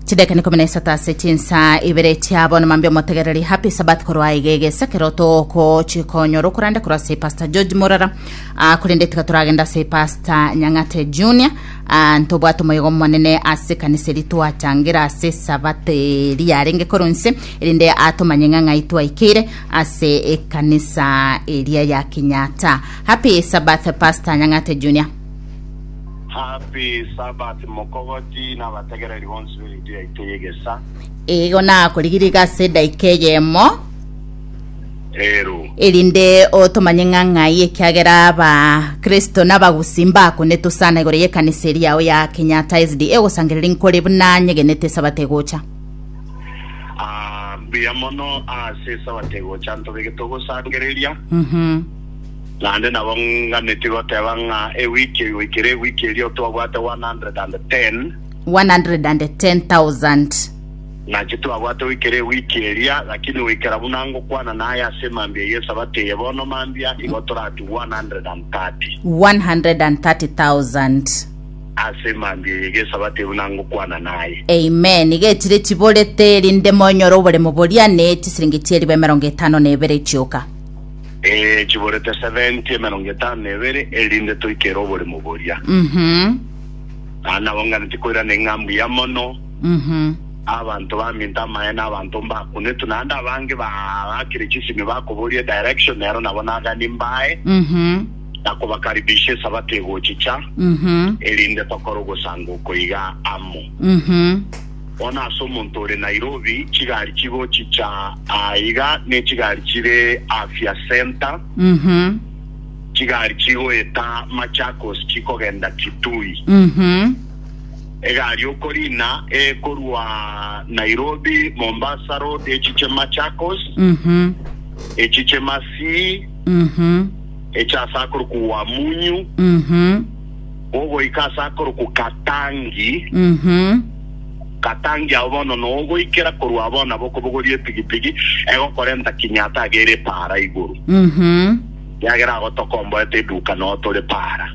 chidakika ikumi na isato ase chinsa ibere chia bono mambia omotegereri happy sabat korwa aiga egesa kero tokochika onyora okorande korwa ase pastor george morara Ah, korende tiga toragenda ase pastor nyang'ate junior Ah, ntobwate omoyogo omonene ase kanisa eri twachangera ase sabat eri yarenge korwa nse erinde atomanye ng'ang'ai twaikeire ase ekanisa eria ya kenyatta happy sabat pastor nyang'ate junior Happy Sabbath mokogoti na abategereri bonsi be Radio yaito y'egesaa. Igo nakorigiriga ase edaika eyemo Ero. erinde otomanye ng'a ng'ai ekiagera abakristo n'abagusi mbakonetosana igoro y'ekanisa eri yao ya kenyatta sda ogosangereria nkore buna nyegenete esabato egocha Ah, mbuya mono ase esabato egocha ntobegete ogosangereria. Mhm. Naende nabo nganetie goteba ng'a ewiki eye goikera ewiki eria twabwate 110. 110,000. Nachi twabwate goikera ewiki eria, lakini goikera buna ngokwana naye ase emambia y'Esabato eye bono mambia, igo toratigwe 130. 130,000. Ase emambia eye y'Esabato eye buna ngokwana naye. Amen. Iga echire chiborete, erinde monyore oboremo boria, ne chisiringi chi'eriba emerongo etano na ebere chioka. Ee, chiborete seventy, emerongo etano na ebere, erinde toike ere oboremo boria. Mhm. Na nabo nganeti koirana eng'ambu ya mono, Mhm. abanto baminto amaene, abanto mbakunetwe, naende abange bagakire chisimi bakoboria direction, nero nabo nagani mbae, Mhm. na kobakaribisha esabato egochicha, Mhm. erinde tokore ogosango oko iga amo. Mhm. Bono ase omonto ore Nairobi, chigari chigochicha aa iga nechigari chire Afya Centre, chigari chigoeta Machakos chikogenda Kitui. Egari okorina ekorwa Nairobi Mombasa Road echiche Machakos, echiche Masii, eche ase akorokwa Wamunyu, Ogoika ase akorokwa Katangi. Katangi ao bono nogoikera korwa abao na bokobogoria epigipigi egokorenta Kinyatta agere Paara igoro. Kiagera agho tokomboete eduka noo tore Paara.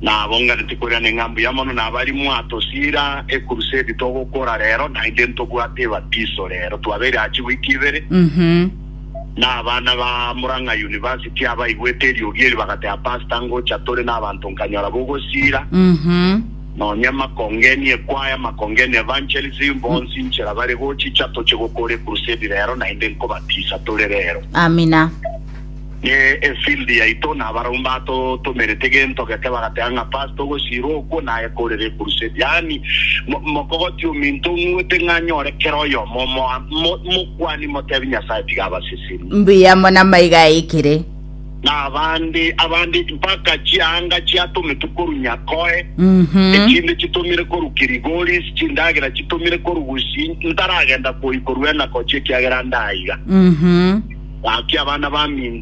Nabo nganeti koirana ng'a mbuya mono nabari mwatosiira ecrusade togokora rero naende ntobwate ebatiso rero. Twabeire achi week ibere. Na abana ba Murang'a University abaigwete eriogi eri bagateba, Pastor ngocha tore nabanto nkanyora bogosiira, nonya makongeni ekwaya, makongeni evangelism, bonsi inchera bare gochicha toche gokora ecrusade rero naende nkobatisa tore rero. Amina. Ne efield yaito na abarabwo mbatotomerete gento geke bagateba ng'a Pastor ogosiirwa okwo naye korere ecrusade. Yaani mo- mokogotia ominto ng'wete ng'a anyore kera oyomo omoa- mo- mokwane Timotebi Nyasaye tiga abaseseni. Mbuya mono amaiga aikire. Na abande, abande mpaka chianga chiatometwe korwa Nyakoe, echinde chitomire korwa Kirigoris, chindagera chitomire korwa Gusi, ntaragenda koikorwa enakochia ekiagera nda aiga. Gaki abana baminto.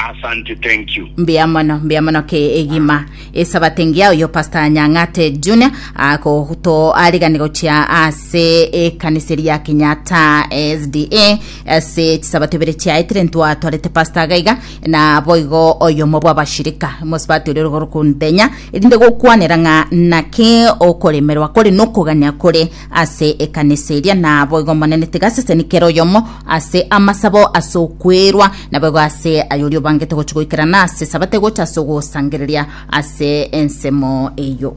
Asante thank you. Mbuya mono mbuya mono ke egima esabato engiya oyo pastor nyang'ate junior akoto arigani gochia ase ekanisa eri ya kenyatta sda ase chisabato ibere chiaetire ntwatwarete pastor gaiga na boigo oyomo bwa bashirika mosibati oria origoro kundenya erinde gokwanera ng'a naki okoremerwa kore nokogania kore ase ekanisa eria, naboigo Omonene tigaseseni kera oyomo ase amasabo ase okwerwa, naboigo ase ayoria obangete gochia goikerana ase Sabato egocha ase ogosangereria ase ensemo eyio.